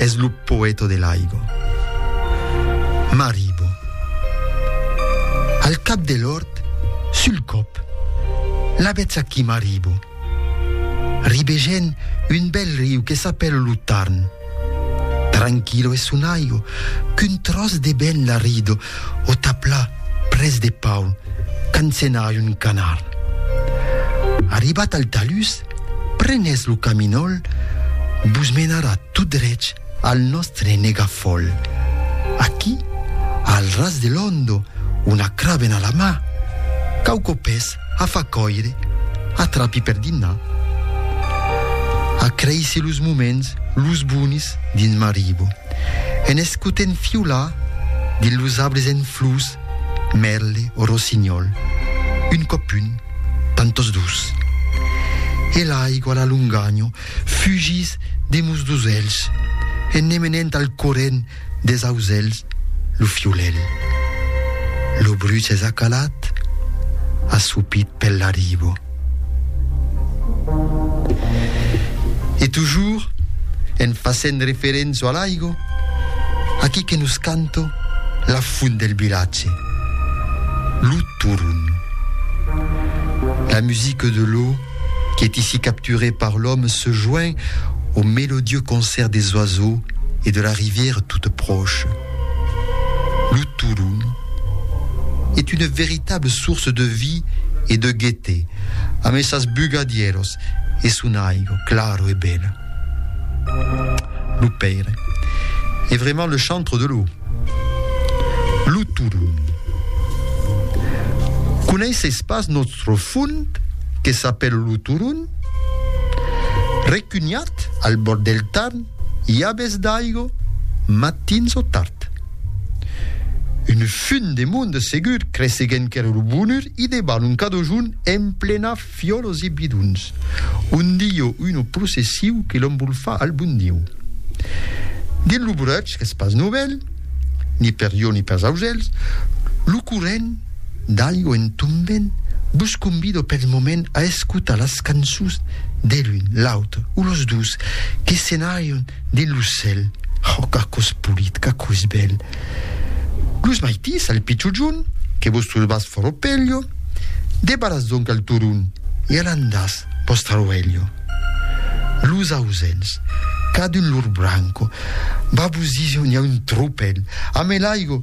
Es lo poeto de l'aigo. M'arribo. Al cap de l'ort, sul còp, la vètz aquí m'arribo. Ribegèn un bèl riu que s'apèla lo Tarn. Tranquilo es son aigo, qu'un tròç de vent la rido o tapla près de Paul, qu'encenai un canard. Arribat al talús, Prenètz lo caminòl, vos menarà tot drech al nòstre negafòl. Aquí, al ras de l'òndo, una cravena a la mà, quauqu pes a far còire, atrapi per dinar. Acreissi los moments, los bonis, dins Maribo, en escotent fiolar dins los arbres en flors, Merle o rossinhòl, un còp un, tant tos dus. E l'aigua a la longanho fugís de mos dos elhs en ne menent al corrent des auselhs lo fiolèl. Lo bruch es acalat, assopit pel laribo. E tujur, en fasent referença a l'aigo, aquí que nos canto la font del vilatge, lo Turun. La musique de l'eau qui est ici capturée par l'homme se joint au mélodieux concert des oiseaux et de la rivière toute proche. Lo Turun est una veritable source de vie e de gaieté amb es sas bugadieros e son aigo claro e bela. Lo Pèire est vraiment le chantre de l'eau. Lo Turun coneisseis pas nòstre fond que s'apèla lo Turun? Recunhat al bòrd del Tarn, I a bes d'aigo, matins o tard. Un fum de monde segur creseguent qu'ère lo bonur i deban un cadojun en plena fiolos e bidons, un dillo uno processiu que l'embolfa al bon Diu. Dins lo breuch qu'es pas novèl, ni per jo ni pers ausèls, lo corrent, D'algo en tombent, vos convido pel moment a escotar las cançons de l'un, l'autre o los dos que senarion dins lo cèl. Oh, qu'aquò es polit, qu'aquò es bèl! Los maitís al pichujon, que vos trobas fòrt o pelho, debaratz donc al turon e alandàtz vòstra roelho. Los ausèls, cadun lor branco, va vos dire on i a un tropèl, amé l'aigo,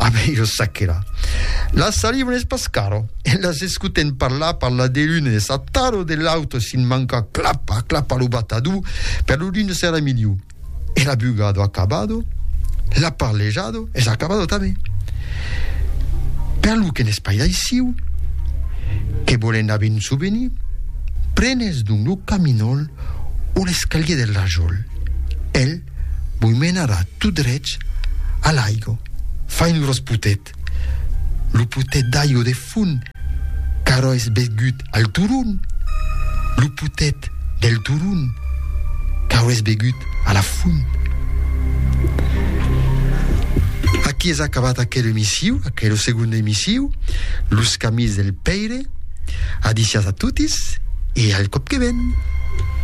A ben jo sac que la. La saliva n'es pas caro. E las escuten parlar, parlar de l'un e sa taro de l'autre sin mancar clapa, clapa lo batador, per lo l'un serà miliu. E la bugado acabado, la parlejado es acabado tanben. Per lo que n'es pas d'aissiu, que volen a ben souvenir, prenes donc lo caminol o l'escalier del rajol. El Voi menarà tot drech a l'aigo, fain los potet. Lo potet d'aigo de fon qu'arò es begut al turon, lo potet del turon qu'arò es begut a la font. Aquí es acabat aquel emissiu, aquelo segonde emissiu, Los camins del Pèire. Adicias a totis e al còp que ven.